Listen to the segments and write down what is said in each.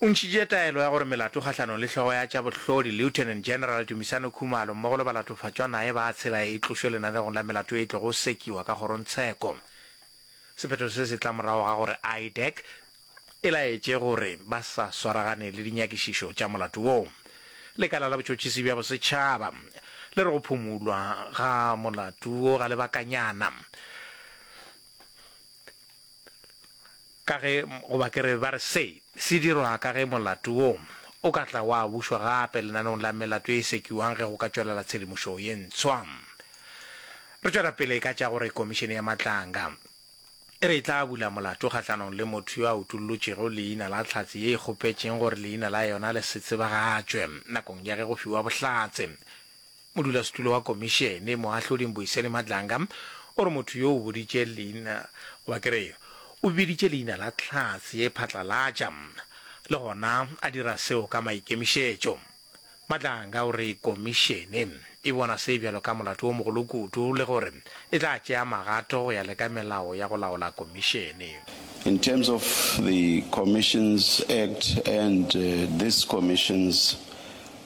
O ntšhitše taelo ya gore melato kgahlanong le hlogo ya tša bohlodi, Lieutenant General Dumisani Khumalo, mmogo le balatofatšwa naye ba tshela e tlošwe lenanegong la melato e tlogo sekiwa ka kgorongtsheko. Sephetho se se tla morago ga gore IDAC e laetše gore ba sa swaragane le dinyakišišo tša molato wo. Lekala la Botšhotšhisi bja Bosetšhaba le re go phumulwa ga molato wo ga lebakanyana. Ka ge, goba ke re, ba re se se dirwa ka ge molato wo o ka tla wa bušwa gape lenaneong la melato e e sekiwang ge go ka tšwelela tshedimošo ye ntshwa. Re tšwela pele ka tša gore Komišene ya Matlanga e re e tla bula molato kgahlanong le motho yo a utollotšego leina la Hlatse ye e kgopetšeng gore leina la yona le se tsebagatšwe nakong ya ge go fiwa bohlatse. Modulasetulo wa Komišene, Moahlodi Mbuyiseni Madlanga, o re motho yo o boditše leina, goba ke re, o biditše leina la tlhase ye phatlalatša, le gona a dira seo ka maikemišetšo. Madlanga o re Komišene e bona se bjalo ka molato o mogolo kudu le gore e tla tšea magato go ya le ka melao ya go laola Komišene. In terms of the Commissions Act and this Commissions,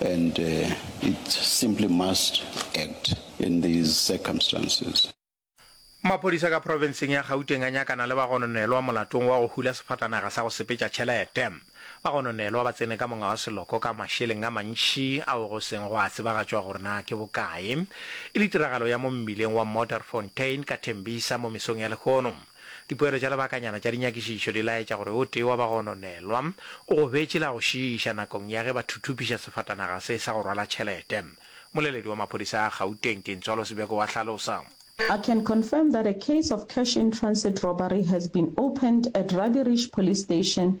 And uh, it simply must act in these circumstances. Maphodisa ka profenseng ya Gauteng a nyakana le bagononelwa molatong wa go hula sefatanaga sa go sepetša tšhelete. Bagononelwa ba tsene ka monga wa seloko ka mašeleng a mantši ao go seng go a tsebagatšwa gore na ke bokae, e le tiragalo ya mo mmileng wa Modderfontein ka Tembisa mo mesong ya lehono. Dipoelo tša lebakanyana tša dinyakišišo di laetša gore o tee wa bagononelwa o gobetše la go šiiša nakong ya ge ba thuthupiša sefatanaga se sa go rwala tšhelete. Moleledi wa maphodisa a Gauteng, Tintswalo Sibeko wa hlalosa. I can confirm that a case of cash in transit robbery has been opened at Rabi Rish Police Station,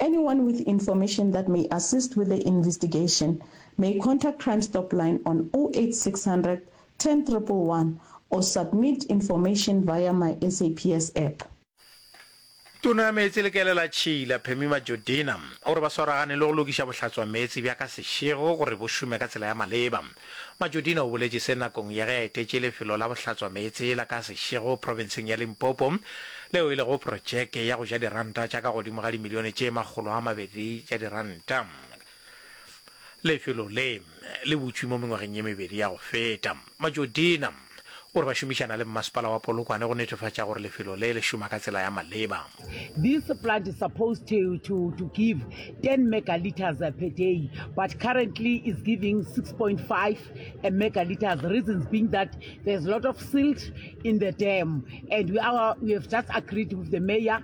Anyone with information that may assist with the investigation may contact Crime Stop Line on 08600 10111 or submit information via my SAPS app. Tona ya Meetse le Kele la Tšhila, Phemima Jodina, o re ba swaragane le go lokiša bohlatswameetse bja ka sešego gore bo šome ka tsela ya maleba. Majodina o boletše se nakong ya ge a etetše lefelo la bohlatswameetse la ka Seshego profenseng ya Limpopo leo e lego projeke ya go ja diranta tša ka godimo ga dimilione tše makgolo a mabedi tša diranta. Lefelo le le butšwe mo mengwageng ye mebedi ya go feta. Majodina. O re ba šomišana le mmasepala wa Polokwane go netefatša gore lefelo le le šoma ka tsela ya maleba. This plant is supposed to, to, to give 10 megaliters per day, but currently is giving 6.5 megaliters. Reasons being that there's a lot of silt in the dam, and we, are, we have just agreed with the mayor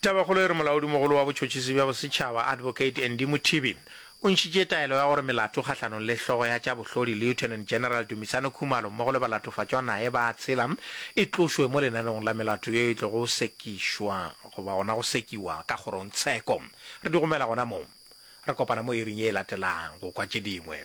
Tabakgolo e re Molaodimogolo wa Botšhotšhisi bja Bosetšhaba, Advocate Andy Mothibi, o ntšhitše taelo ya gore melato kgahlanong le hlogo ya tša bohlodi Lieutenant General Dumisani Khumalo mmogo le balatofatšwa naye ba a tshela e tlošwe mo lenaneong la melato yeo e tlogo go sekišwa goba gona go sekiwa ka kgorongtsheko. Re di gomela gona moo. Re kopana mo iring ye e latelago go kwa tše dingwe.